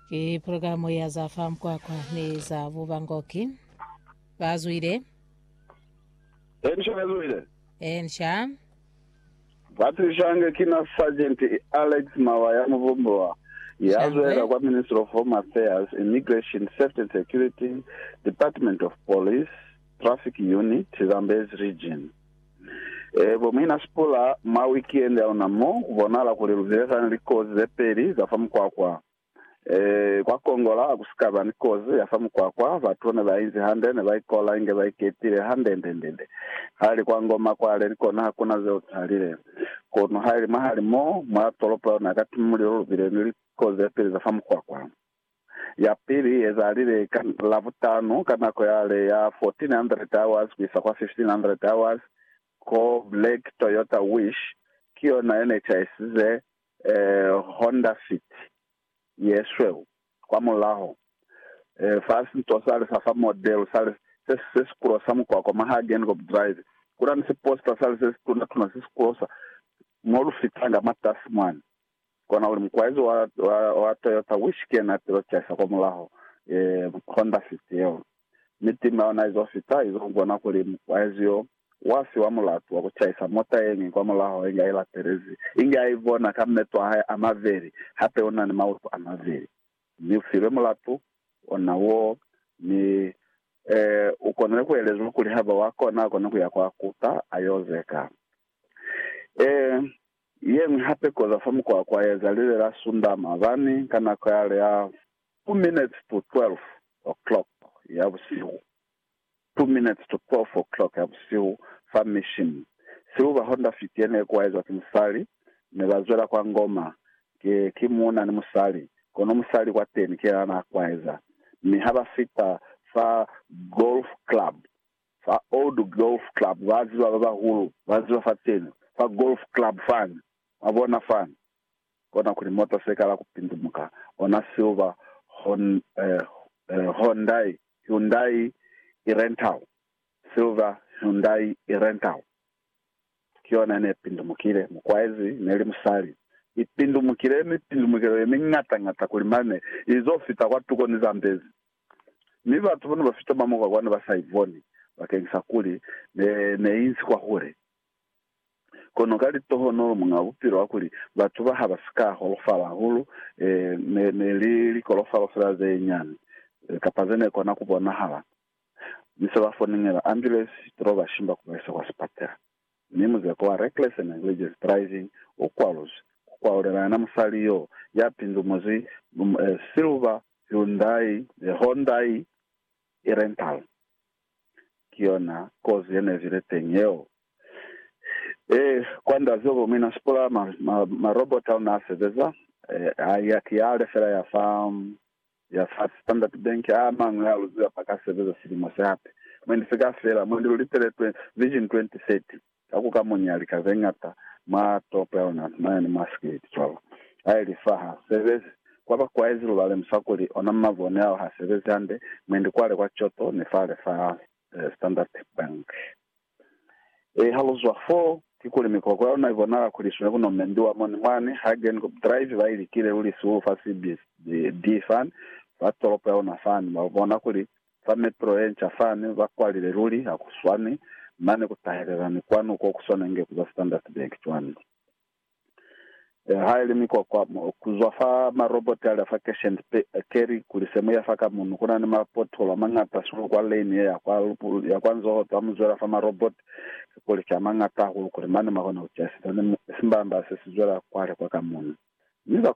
Ki pulogalamu ya za fa mukwakwa ni za bubangoki. Bazwile. Ensha bazwile. Ensha. Batilishange ki na Sergeant Alex Mawa ya Muvumbuwa, ya Shangwe. zwela kwa Ministry of Home Affairs, Immigration, Safety and Security, Department of Police, Traffic Unit, Zambezi Region. Ee, bo Mina Spula, mwa wikiendi ya luna mo, ku bonahala kuli lu bile sani ni likozi ze peli za fa mukwakwa. Ee, kwa Kongola, ha ku si ka ba ni kozi ya fa mukwakwa, batu ne ba inzi hande, ne ba ikola inge ba iketile handendendende. Ha li kwa Ngoma kwale, ni kona ha ku na zeo za lile. Kono ha ili mwahali mo, mwa tolopo ya luna ya Katimulilo, lu bile ni likozi ze peli za fa mukwakwa. Ya pili iezalile ka Labutanu ka nako yale ya 1400 hours kuisa kwa 1500 hours ko Lake Toyota Wish, ki yona ye ne chaisize Honda Fit ye sweu kwa mulaho. Fa sinto sale sa fa model sale se se si kulosa mukwakwa mwa Hagenkorb Drive, kuna ni siposta sale se si tuna-tuna se si kulosa mo lu fitanga mwatasi mwani. Kona uli mukwaizi wa, wa, wa Toyota Whisky na tilo caisa kwa mulaho, eh, Honda Fit yeo. Mi tima yona izo fita, izo bona kuli mukwaizi yo, wa fiwa mulatu wa ku caisa mota yeñwi kwa mulaho inge ilatelezi, inge a ibona ka meto a hae a maveli, hape una ni mautu a maveli. Mi ufilwe mulatu, ona wo, mi, eh, u konile ku elezwa kuli haba wa kona, a kone kuya kwa kuta, a yo zeka. Eh, Yeñwi hape koza fa mukwakwa ya zalile la Sunda mabani ka nako ya li ya two minutes to twelve o'clock ya busihu, two minutes to twelve o'clock ya busihu, fa Mission. Sibu ba Honda Fit ye ne kuwaezwa ki musali, ne ba zwela kwa Ngoma, ki, ki muuna ni musali, kono musali kwateni ki yena na kuwaeza, mi ha ba fita fa Golf Club, Fa Old Golf Club ba ziba ba bahulu ba ziba fa teni fa golf club fani ba bona fani kona kuli mota se kala ku pindumuka ona silver hon eh eh Hyundai Hyundai i rental silver Hyundai i rental ki yona ne pindumukile mukwaezi neli musali i pindumukile mipindumukelo ye mingata ngata kuli mane izo fita kwa tuko ni Zambezi Mi batu bane bafita mamuka kwani ba sa iboni, bakeñisa kuli ne, ne inzi kwahule. Kono ka litohonolo Muñaa Bupilo akuli, batu ba ha ba si ka holofala hahulu, e, ne, ne li likolofalo fela ze nyani, kapa ze ne kona ku bonahala. Mi se ba foningela ambulance, to ba shimba ku ba isa kwa sipatela. Mi muzeko wa reckless and negligence driving u kwaluzi, ku kwalulela yena musali yoo ya pindumwezi, um, e, silver Hyundai le Hondai e-Rental ki yona kozi ye ne bile teñi yeo. Ee, kwand'a zobo mina sipolaya ma, ma, marobota ao n'a sebeza. Ee, a ya ki a lefela ya fa, ya fa Standard Bank. A mañwi a luziwa pa ka sebeza silimo se hape. Mwendi se ka fela, mwendi lu liteletwe Vision 2030. Ka ku kamunya lika ze ñata mwa Topelnat mane ni mwa Skate, cwalo. Ha ili fa ha sebezi, kwa ba kwa ezi lu ba lemusa kuli ona mabone ao ha sebezi hande, mwendi kwale kwa Kyoto ni fale fa Standard Bank. Ee, ha lu zwa foo, kikuli mikoko ya luna i bonala kuli i sune ku nomendiwa mo ni mwani Hagen ku drive ba i likile luli sihulu fa CBD fani fa tolopo ya luna fani, ba bona kuli Fa mepelo yenca fani ba kwalile luli ha ku swani, mane ku tahelela ni kwanu ko ku swanenge ku ba Standard Bank cwani le ha ili mikwakwa ku zwa fa maroboti ali a fa Cash and Carry kuli se mu ya fa ka munu. Ku na ni ma pothole a mañata sulu kwa lane ye ya kwa, ya kwa nzoho za mu zwela fa maroboti ki kuli ki a mañata hahulu kuli mane ma kona ku ciyasisa ni simbamba se si zwela kwale kwa ka munu. Mi